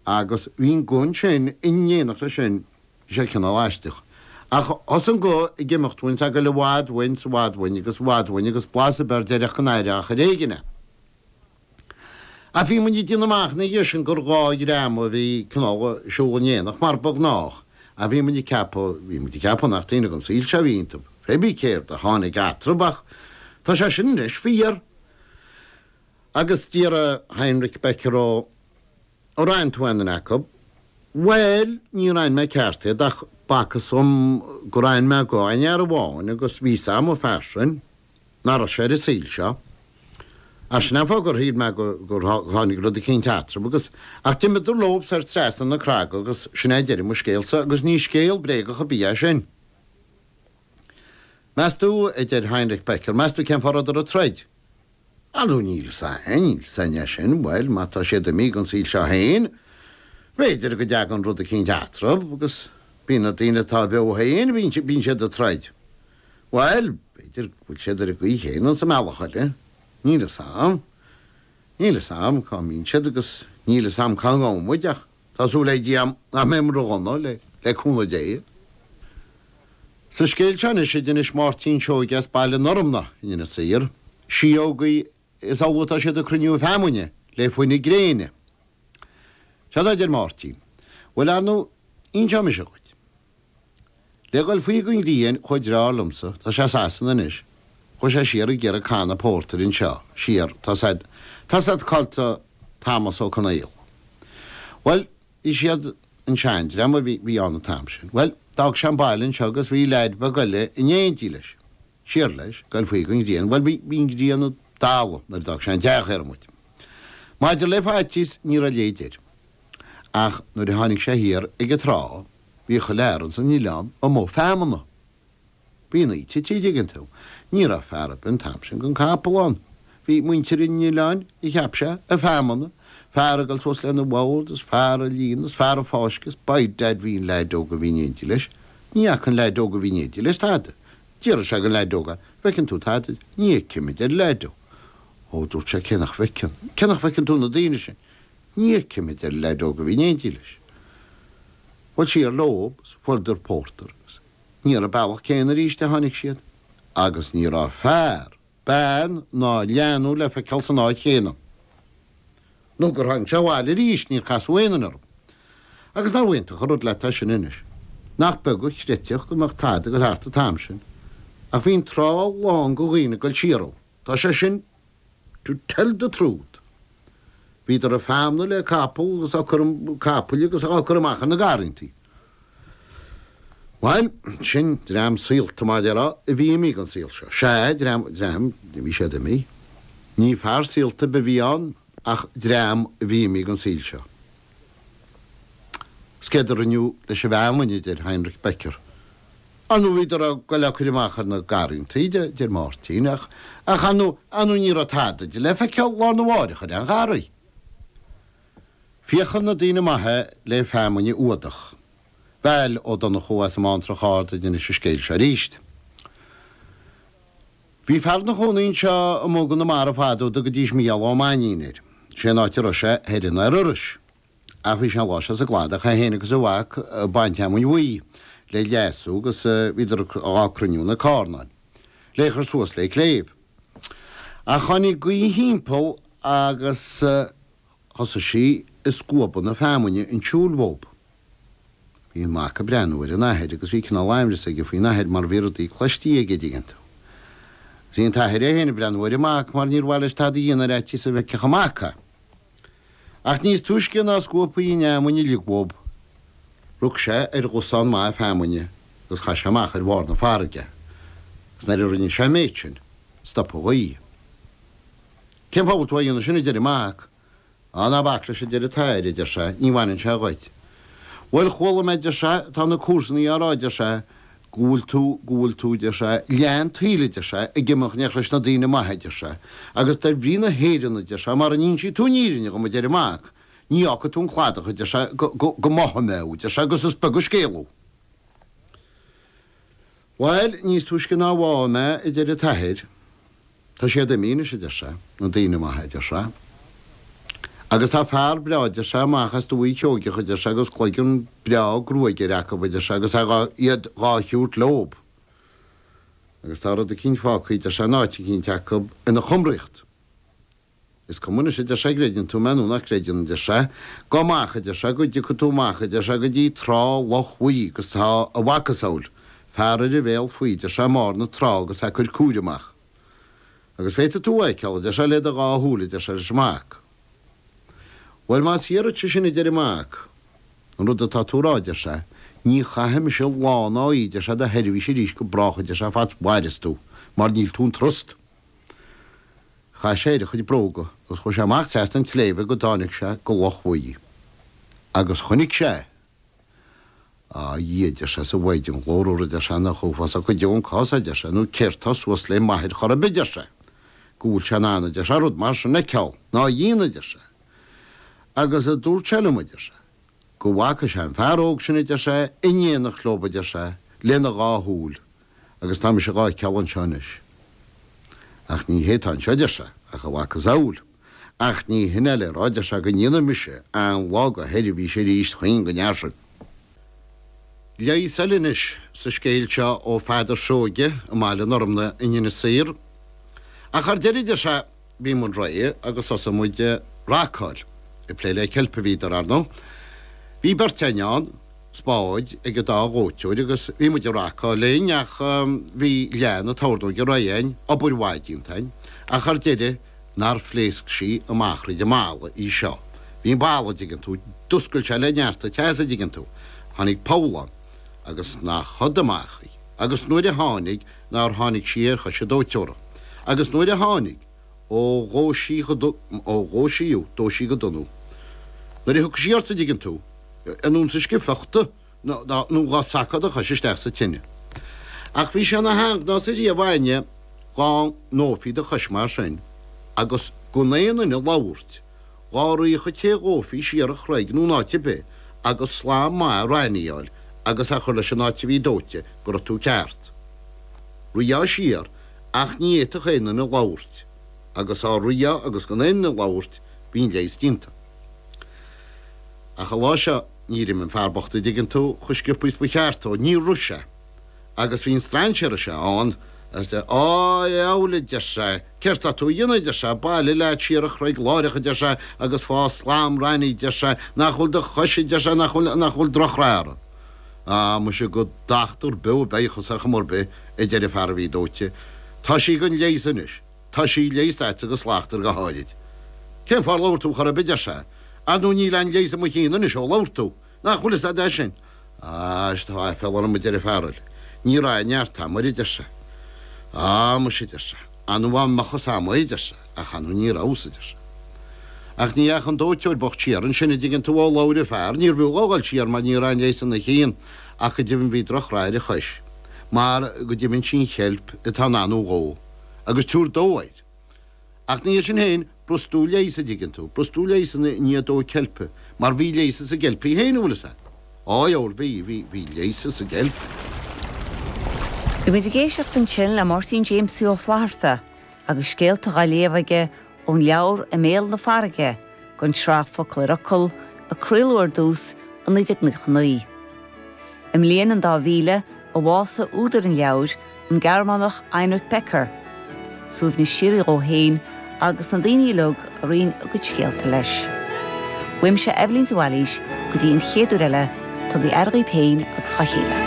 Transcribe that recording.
Agus bhí an guth ansin in éineacht leis sin, bhí sé cineál aisteach. Ach thosaigh an guth ag imeacht uainn 's ag goil i bhfad uainn 's i bhfad uainn agus i bhfad uainn agus blas ar bith ar deireadh ach go n-aireofá ar éigin é. Ach bhí muid ag déanamh amach ina dhiaidh sin gur dhá dhream a bhí cineál ag siúl in éineacht mar ba ghnách ach bhí muid ag ceapadh, bhí muid ag ceapadh nach daoine den saol seo a bhí iontab. Fébí céard a tháinig eatrab ach tá sé sin anois fíor. Agus d'fhiafraigh Heinrich Becker dhó. Ar aithin tú aon duine acu? Bhuel, níor aithin mé ceart iad ach b'fhacthas dhom gur aithin mé go aon fhear amháin agus bhí 'fhios a'm an fear sin, nach raibh sé ar an saol seo. Ach sin é an fáth gur shíl mé gur tháinig rud eicínt eatrab agus, ach d'imíodar leob soir trasna na craga agus sin é deireadh mo scéalsa agus ní scéal bréagach ar bith é sin. Meastú, a deir Heinrich Becker, meastú cén fáth a rabhadar ag troid? Ar ndú níl 'fhios a'm, níl 'fhios a'm é sin, bhuel, má tá siad imithe gon saol seo féin, b'fhéidir go dtagann rud eicínt eatrab agus bíonn na daoine atá beo féin, bíonn, bíonn siad ag troid. Bhuel, b'fhéidir go bhfuil siad ar an gcaoi chéanna sa mbealach eile. Níl 'fhios a'm. Níl 'fhios a'm cá mbíonn siad agus níl 'fhios a'm cá ngabhfaidh muid ach. Tá súil le Dia nach mbeidh muid ró-dhona, le cúnamh Dé. Sa scéal seo anois, a d'inis Máirtín Seoige as Baile an Fhormna in Inis Oírr, síogaí is amhlaidh atá siad ag cruinniú feamainne le fuineadh gréine. Seod é, a deir Máirtín. Bhuel, ar ndú, inseoidh mise dhuit. Le dhul faoi gon ghrian chuaigh deartháir liomsa, tá sé i Sasana anois. Chuaigh sé siar ag iarraidh canna pórtair anseo, siar, tá siad, tá siad caillte, Tomás Ó Conaola. Bhuel, bhí siad, an seandream a bhí, bhí ann an t-am sin. Bhuel, d'fhág sé an baile anseo agus bhí leaid beag eile in éindí leis. Siar leis, ag goil faoi gon ghrian, bhuel, bhí an ghrian ag dalladh nuair a d'fhág sé an teach ar an mbóthar. Maidir le faitíos, ní raibh a leithéid air. Ach nuair a tháinig sé thiar ag an trá, bhí chuile fhear ins an oileán amuigh ar feamainn. Bhí an oíche tite, tuigeann tú. Ní raibh fear ar bith an t-am sin gan capall ann. Bhí muintir an oileáin, a cheap sé, ar feamainn, fear ag goil suas lena bhord is fear ag líonadh is fear ag fáscadh is b'ait d'fhad bhí an leaid óg a bhí in éindigh leis. Ní fhaca an leaid óg a bhí in éindigh leis tada. D'iarr sé gon leaid óg, an bhfeiceann tú tada? Ní fheicim, a deir an leaid óg. Ó, dúirt sé, cé nach bhfeiceann, cé nach bhfeiceann tú na daoine sin? Ní fheicim, a deir an leaid óg a bhí in éindigh leis. Bhuel, siar leob is fuaireadar pórtar agus ní ar an mbealach céanna arís a tháinig siad agus ní raibh fear bean ná leanbh le feiceáil san áit chéanna. Nó gur tháinig sé abhaile arís, níor casadh aon duine orm. Agus nach iontach an rud leat é sin anois. Nach beag a chreidfeadh go mbeadh tada ag dul thart an t-am sin. Ach bhí an trá lán de dhaoine ag dul siar ann. Tá sé sin to tell the truth. Bhíodar ag feamnadh le capall agus á cur, capaill agus á gcur amach ar na garrantaí. Bhail, sin dream saolta, mar a déarfá, a bhí imithe ón saol seo. Sea, dream, dream, bhí siad imithe. Ní fear saolta ar bith a bhí ann ach dream a bhí imithe ón saol seo. Is céard a rinneadh leis an bhfeamainn, a deir Heinrich Becker. Á nó bhíodar ag goil á cur amach ar na garrantaí, a deir Máirtín, ach, ach á nó, á nó ní raibh tada de le feiceáil lá arna mháireach ar aon gharraí. Féachann na daoine maithe le feamainn a fhuadach. Val Ó Donnchú as an mBántrach Ard a d'inis an scéal seo aríst. Bhí fear ina chónaí anseo amuigh i gConamara fad ó, a dtugaidís Mícheál Ó Mainnín air. 'Sé an áit a raibh sé thoir i nDoire Iorrais. Ach bhí sé an lá seo sa gcladach, é fhéin agus a mhac, ag baint fheamainn bhuí le leasú agus bhíodar dhá cruinniú ina carnáin le chur suas le cléibh. Ach tháinig gaoth thimpeall agus. Thosaigh sí ag scuabadh na feamuinne chun siúil uathub. Bhí an mac ag breathnú ar an athair agus bhí cineál aimhreas aige faoin athair mar bhí rudaí cloistí aige, a dtuigeann tú. Bhí an t-athair é féin ag breathnú ar an mac mar níor mhaith leis tada a dhéanamh ar fhaitíos a bhfeicfeadh an mac é. Ach níos túisce ná a scuabfaí an fheamuinn uilig uathub, rug sé ar dhosán maith feamuinne agus chaith sé amach ar bharr na farraige é. Agus nuair a rinne sé an méid sin, stop an ghaoth. Cén fáth a bhfuil tú á dhéanamh sin, a deir an mac. Á, ná bac leis, a deir an t-athair, a deir sé, ní bhaineann sé dhuit. Bhuel, chuala mé, a deir sé, tá na comharsanaí á rá, a deir sé, go bhfuil tú, go bhfuil tú, a deir sé, leath an tsaoil, a deir sé, ag imeacht in éineacht leis na daoine maithe, a deir sé, agus dar bhrí na hÉireann, a deir sé, mara n-insí tú an fhírinne dhom, a deir an mac, ní fhágfaidh tú an cladach, a deir sé, go, go, go mbáfaidh mé thú, a deir sé, agus is beag an scéal thú. Bhail, níos túisce ná a bháfá mé, a deir an t-athair, tá siad imithe anois, a deir sé, na daoine maithe, a deir sé, agus tá fear breá, a deir sé, amach as Dúiche Sheoigheach, a deir sé, agus cloigeann breá gruaige air acu, a deir sé, agus tá siad dhá thabhairt leob, agus tá rud eicínt fágtha, a deir sé, in áit eicínt acu ina chumraíocht. Is cuma anois, a deir sé, an gcreideann tú mé nó nach gcreideann, a deir sé. Gabh amach, a deir sé, go dtiocfaidh tú amach, a deir sé, go dtí trá Loch Bhuí agus tá a mhacasamhail fear ar a bhéal faoi, a deir sé, i mbarr na trá agus é ag cur cúir amach. Agus féadfaidh tú a fheiceáil, a deir sé, le do dhá shúil, a deir sé leis an mac. Bhuel, más fhíor duit sin, a deir an mac, an rud atá tú a rá, a deir sé, ní chaithfidh mise lá ná oíche, a deir sé, i do sheirbhís arís go brách, a deir sé, fad 's mhaireas tú, mar níl tú in trust. Chaith sé air a chuid bróga agus chuaidh sé amach trasna an tsléibhe go dtáinic sé go loch bhuí agus chonnaic sé é. Á a Dhia a deir sé is a Mhaighdean ghlórmhar a deir sé nach uafásach go deo an cás é a deir sé nó céard tá suas lé m'athair chor ar bith a deir sé go bhfuil sé in ann a deir sé rud mar sin a cheilt ná a dhéanamh a deir sé agus a dúirt sé liom a deir sé go bhfaca sé an fear óg sin a deir sé in éineacht leob a deir sé lena dhá shúil a agus tá mise dhá cheilt anseo anois. Ach ní hé tá anseo, a deir sé, ach a mhacasamhail. Ach ní hin é le rá, a deir sé, go ndéanfaidh mise aon lá dho sheirbhís aríst choíche go deo. Leigheas eile anois sa scéal seo ó Pheadar Seoige as Baile an Fhormna in Inis Oírr. Ach ar deireadh, a deir sé, bhí muid réidh agus thosaigh muid a racáil, ag plé le ceilp a mbíodar, ar ndóigh. Bhí beirt in éindí ann, spád ag an dá dhóiteoir agus bhí muid ag racáil linn ach bhí leath na tornóige réidh againn, obair mhaith déanta againn, ach ar deireadh nár phléasc sí amach thríd an mballa í. Sea, bhí an balla, dtuigeann tú, d'oscail sé le neart an teasa, dtuigeann tú. Tháinig poll ann agus nach siúd amach í agus nuair a tháinig, nár tháinig sí ar chois a dóiteora, agus nuair a tháinig, ó, dhó' sí go dona, ó, dhó' sí, ú, dó' sí go dona, ú, nuair a thiocfadh sí ort a' dtuigeann tú, is ionann 's dhá gcaití, nó dhá sacadh do chois isteach sa tine. Ach bhí sé 'n-a sheanghnás ariamh againne dhá ndófaí do chois mar sin, agus gan aon duine labhairt. Dhá rithfeadh an té dhófaí siar an chreig nó in áit ar bith agus slam raithní a fháil agus a chur leis an áit a bhí dóighte go raibh tú ceart. Rithfeá siar ach ní fhéadfadh aon duine labhairt agus dhá rithfeá agus gan aon duine labhairt bhí an leigheas déanta. Ach an lá seo níor imigh an fear bocht a dtuigeann tú, cho scioptha is ba cheart dó. Níor rith sé. agus bhí an strainséar seo ann, is, Á, a dheabhail, a deir sé, céard tá tú a dhéanamh, a deir sé, bailigh leat siar an chreig láireach, a deir sé, agus fáigh slám raithní, a deir sé, nach bhfuil do chois, a deir sé, nach bhfuil, nach bhfuil drochrath uirthi. Á, muise go dtachtar beo bheidheas thusa ar chuma ar bith, a deir an fear a bhí dóite, tá sí gan leigheas anois, tá sí leigheasta agat go slachtmhar go háirid. Cén fáth ar labhair tú chor ar bith, a deir sé, ar ndú níl aon leigheas i mo chionn anois ó labhair tú, Nach bhfuil fhios a'd é sin? Á, is tá aiféala orm a deir a' fear gall. Ní raibh aon neart a'm uirre deir sé. Á, muise deir sé, ar ndú ba í mo chos-sa a b'í deir sé, ach ar ndú ní raibh a fhios deir sé. Ach ní dheachaidh an dóighteoir bocht siar annsin a' dtuigeann tú ó labhair a' fear, níor bhfiú dhó dhul siar mar ní raibh a'n leighis ina chionn ach go deimhin bhí droch rath ar a chois mar go deimhin sí an cheilp atá in ann thú a dhó agus tú a dhó. Ach ina dhiaidh sin féin b'fhurasta a leigheas, a' dtuigeann tú, b'fhurasta a leigheas i ndiaidh dó ceilpe, mar bhí leigheas sa gceilp í fhéin, an bhfuil fhios a't. Á, bhoil, bhí, bhí, bhí leigheas sa gceilp. Bhí muid ag éisteacht ansin le Máirtín Jaimsie Ó Flaithearta agus scéalta dhá léamh aige ón leabhar I mBéal na Farraige, don tsraith Focal ar Fhocal a craoladh ar dtús i 1999. I mbliain an dá mhíle a bhásaigh údar an leabhair, an Gearmánach Heinrich Becker. Suaimhneas síoraí dhó fhéin agus na daoine uilig a roinn a gcuid scéalta leis. Uaimse Eibhlín de Bhailís go dtí an chéad uair eile, tugaigí aire dhaoib fhéin agus dhá chéile.